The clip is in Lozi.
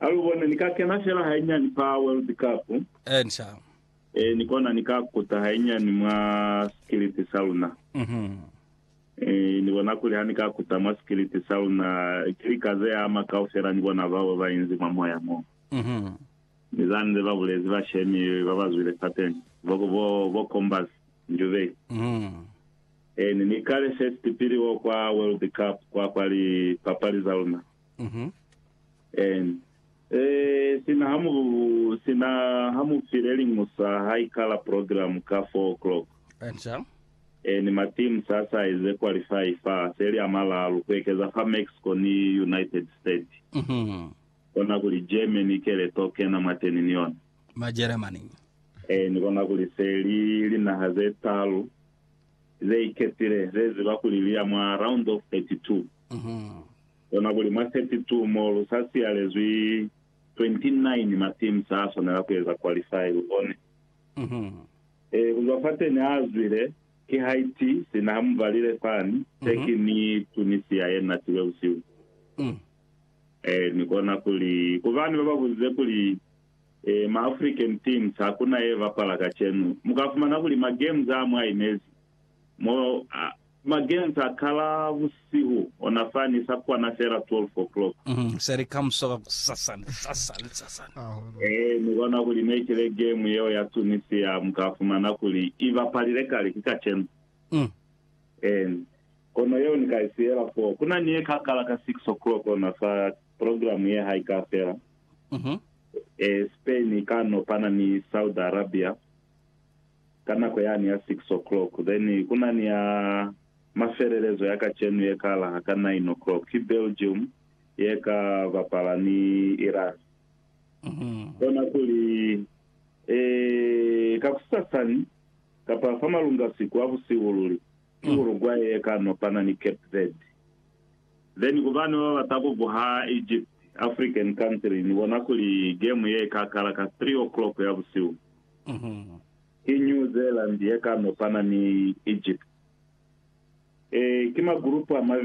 Ha lu bone, ni ka kena fela hainyani fa World Cup. Encia. Ee, ni kona ni ka kuta hainyani mwa sikiliti sa luna. Ee, ni bona kuli ha ni ka kuta mwa sikiliti sa luna, ki lika ze ama kaufela ni bona bao ba inzi mwa moya mo. Ni za nze ba bulezi bashemi ba ba zwile fateni, bo, bo, bo Combers, Njubei. Ee, ni, ni kale first pili wo kwa World Cup, kwa, kwa lipapali za luna. Sina ha mu, sina ha mu file liñusa ha ikala program ka four o'clock. Ni ma teams a sa eze qualify fa seli a malalu, ku ekeza fa Mexico ni United State. Kona kuli Germany ikele to kena mwateni ni yona. Ni kona kuli se li linaha ze talu ze iketile ze ziba kuli li ya mwa round of thirty two. Lona kuli mwa 32 mo lu sa siyalezwi, 29 ma teams a swanela ku eza qualify, lu bone. Ee, ku zwa fateni a zwile, ki Haiti, sina ha mu valile fani, Turkey ni Tunisia ye natilwe busihu boo. Ee, ni kona kuli, ku bani ba ba buzize kuli, Ee, ma African teams ha ku na ye bapala kacenu. Mu ka fumana kuli ma games a mwa inezi mo, a, Magenta kala busihu ona fani sa kwana fela 12 o'clock. Se li kamuso ka kusasani, sasani, sasani. Ee, ni bona kuli ne ki le game yeo ya Tunisia mu ka fumana kuli i bapalile kale ki kacenu. Ee, kono yeo ni ka i siyela foo. Ku na ni ye ka kala ka 6 o'clock ona sa program ye ha i ka fela. Ee, Spain i ka no pana ni Saudi Arabia. ka nako yani ya six o'clock then kuna ni ya mafelelezo ya kacenu ye kala ka nine o'clock ki Belgium ye ka bapala ni Iran. Kona kuli, Eee, kakusasani, kapa fa malunga siku a busihu luli, ki Uruguay ye ka nopana ni Cape Verde. Then ku bana ba bata ku buha Egypt, African country, ni bona kuli game ye ka kala ka three o'clock ya busihu. Ki New Zealand ye ka nopana ni Egypt. Ee, ki magulupu a mabeli.